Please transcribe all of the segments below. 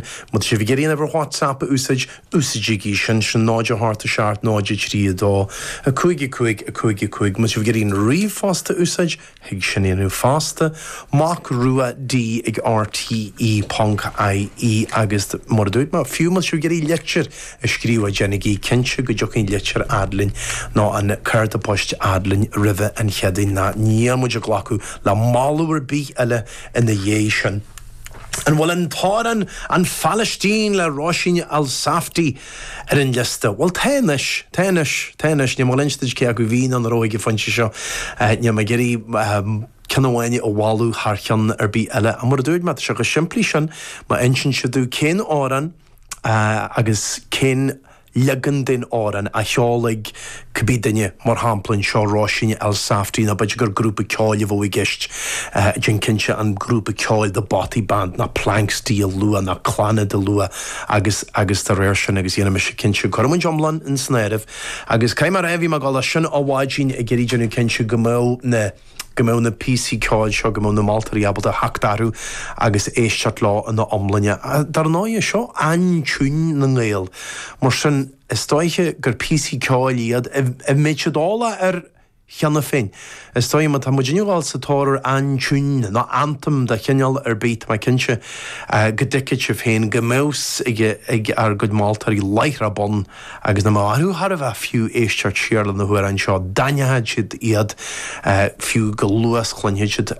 Má tá sibh ag iarraidh an uimhir WhatsApp a úsáid, úsáidigí sin, sin 0 8 7 0 3 2 5 5 5 5. Má tá sibh ag iarraidh an ríomhphost a úsáid, thig sin a dhéanamh fosta, macruad ag rte ponc ie agus, mar a dúirt mé, fiú má tá sibh ag iarraidh litir a scríobhadh, déanaigí cinnte go dtiocfaidh an litir fhad linn, nó an cárta poist fhad linn roimhe an Chéadaoin, ná níl muid ag glacadh le moladh ar bith eile ina dhiaidh sin. An bhfuil an t-amhrán An Phalaistín le Róisín Elsafty ar an liosta? Bhuel, tá anois, tá anois, tá anois. Níl mé ag inse duit cé acu bhí nó nach raibh ag an phointe seo. Níl mé ag iarraidh ceann amháin a mholadh thar cheann ar bith eile. Ach mar a dúirt mé, tá sé chomh simplí sin, má insíonn sibh domh cén amhrán agus cén. leagan den amhrán a cheolfaidh cibé duine, mar shampla anseo Róisín Elsafty, nó b'fhéidir gur grúpa ceoil a bheadh i gceist, déan cinnte an grúpa ceoil The Bothy Band ná Planxty a lua ná Clannad a lua agus agus dá réir sin agus dhéanfaidh mise cinnte go rachaidh an t-iomlán ins an áireamh agus caithfidh mé a rá bhí mé ag gabháil leis sin á bhfáidhín ag iarraidh déanamh cinnte go mbeadh na go mbeadh na píosaí ceoil seo, go mbeadh na moltóirí ábalta theacht orthu agus éisteacht leo ina iomláine. Dar ndóighe, seo aintiúin na nGael, mar sin is dóiche gur píosaí ceoil iad a mbeidh siad eolach air cheana féin. Is dóiche, má tá muid inniu ag gabháil sa tóir ar aintiún nó anthem de chineál ar bith, tá mé cinnte go dtuigfidh sibh féin go mbeadh 's ag ár gcuid moltóirí láithreach bonn. Agus nach mbeadh orthu thar a bheith fiú éisteacht siar le na hamhráin seo d'aithneochadh siad iad fiú chomh luath 's a chluinfeadh siad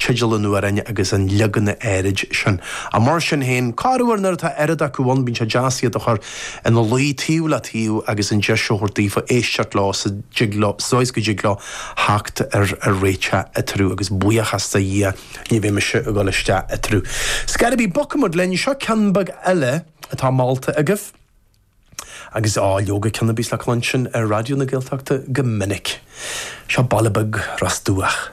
teideal an amhráin agus an leagan áirid sin. Ach mar sin féin corruair nuair atá oiread acu ann bíonn sé deas iad a chur ina luí taobh le taobh agus an deis a thabhairt daofa éisteacht leo sa, go, sa dóigh 's go dtig leo theacht ar réiteach eatarthu agus buíochas do Dhia ní bheidh mise a dhul isteach eatarthu. 'S cár bith bogfaidh muid linn, seo ceann beag eile atá molta agaibh. Agus, á, leoga, cionn a bíos le cluinstin ar Raidió na Gaeltachta go minic, seo baile beag Ros Dumhach.